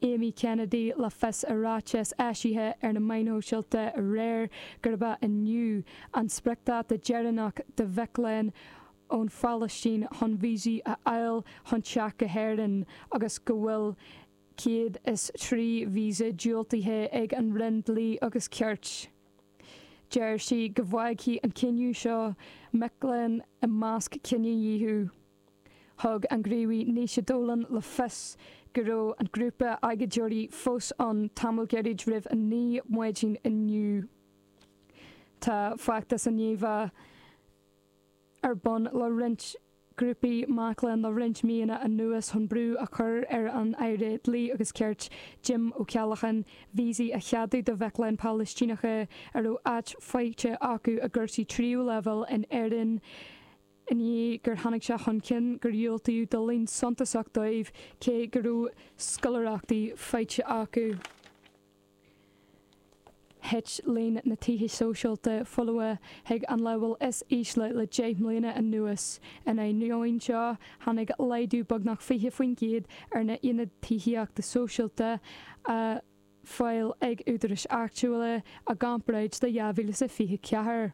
Amy Kennedy le fios i ráiteas eisithe ar na meáin shóisialta aréir gurb é inniu an spriocdáta deireanach do mhic léinn ón Phalaistín chun víosaí a fháil chun teacht go hÉirinn agus go bhfuil 103 víosa diúltaithe ag an Roinn Dlí agus Cirt. Deir sí go bhfágfaidh an cinneadh seo mic léinn i measc cinedhíothaithe. Thug an gníomhaí Naoise Dolan le fios go raibh an grúpa agóideoirí fós ann tamall gairid roimh a 9 maidin inniu. Tá feachtas i ndiaidh a bheith ar bun le roinnt grúpaí mac léinn le roinnt míonna anuas chun brú a chur ar an Aire Dlí agus Cirt, Jim Ó Ceallacháin, víosaí a cheadú do mhic léinn Phalaistíneacha a raibh áit faighte acu i gcúrsaí tríú leibhéal in Éirinn. i ndiaidh gur tháinig sé chun cinn gur diúltaíodh do líon suntasach daofa cé go raibh scoláireachtaí faighte acu. Thit líon na tithe sóisialta folamha chuig an leibhéal is ísle le deich mbliana anuas. In ainneoin seo, tháinig laghdú beagnach 20% ar na haonaid tithíochta sóisialta ar fáil ag údaráis áitiúla i gcomparáid le 2024.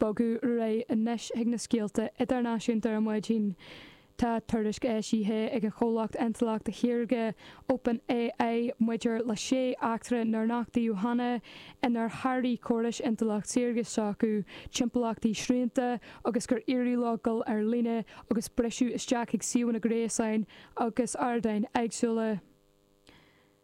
Bogfaidh muid ar aghaidh anois chuig na scéalta idirnáisiúnta ar maidin. Tá tuairisc eisithe ag an chomhlacht intleachta shaorga Open AI maidir le sé eachtra nár nochtaíodh cheana inar sháraigh córais intleacht saorga s'acu timpeallachtaí srianta agus gur éirigh leo dul ar líne agus briseadh isteach i suíomhanna gréasáin agus ardáin éagsúla.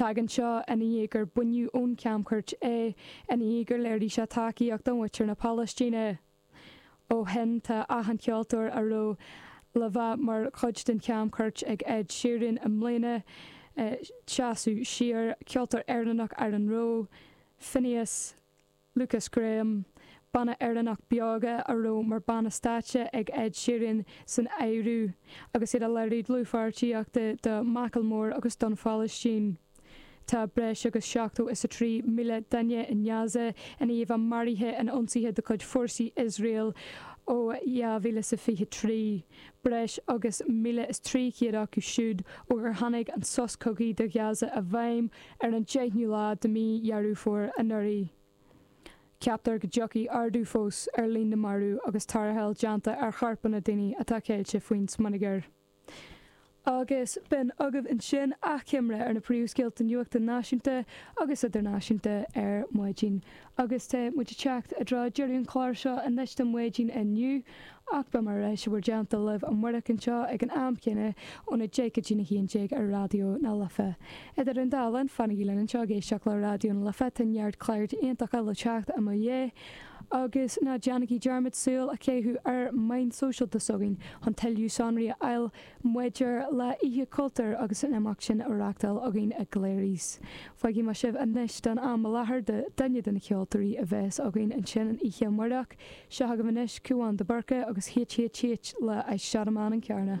Tagann seo ina dhiaidh gur baineadh ón chamchuairt é, i ndiaidh gur léirigh sé tacaíocht do mhuintir na Palaistíne. Ó shin tá achan ceoltóir a raibh le bheith mar chuid den chamchuairt ag Ed Sheeran i mbliana i ndiaidh seasamh siar, ceoltóir Éireannach Aaron Rowe, Finneas, Lukas Graham, banna Éireannach Beoga a raibh mar bhanna stáitse ag Ed Sheeran san áireamh, agus iad ag léiriú dlúthpháirtíochta do Macklemore agus don Phalaistín. Tá breis agus seachtó is a trí mile duine i nGaza i ndiaidh a bheith maraithe in ionsaithe de chuid fórsaí Iosrael ó dhá mhíle is a fiche trí, breis agus míle is trí chéad acu siúd ó gur tháinig an sos cogaidh do Ghaza i bhfeidhm. Ar an deichniú lá de mhí Dheireadh Fómhair anuraidh, ceaptar go dtiocfaidh ardú fós ar líon na marbh agus tarrtháil déanta ar chorpanna daoine atá ceilte faoin smionagar. Agus b'in agaibh ansin achoimre ar na príomhscéalta nuachta náisiúnta agus idirnáisiúnta ar maidin Agus tá muid ag teacht i dtreo deireadh an chláir seo anois do Mhaidin inniu, ach beimid ar ais i bhur dteannta libh amárach anseo ag an am céanna ón 10 go dtí'n 11 ar Raidió na Life. Idir an dá linn, fanaigí linn anseo ag éisteacht le Raidió na Life, tá neart cláir iontacha le teacht i mo dhiaidh, agus ná déanaigí dearmad súil a chaitheamh ar mheáin shóisialta s'againn chun tuilleadh sonraí a fháil Maidir le hOíche Chultúir agus an imeacht sin atá a reachtáil againn i gCleary's, fágfaidh mé sibh anois don am i láthair le duine de na ceoltóirí a bheas againn ansin an oíche amárach. Seo agaibh anois Cúán de Búrca agus HHH le I Shot A Man in Carna.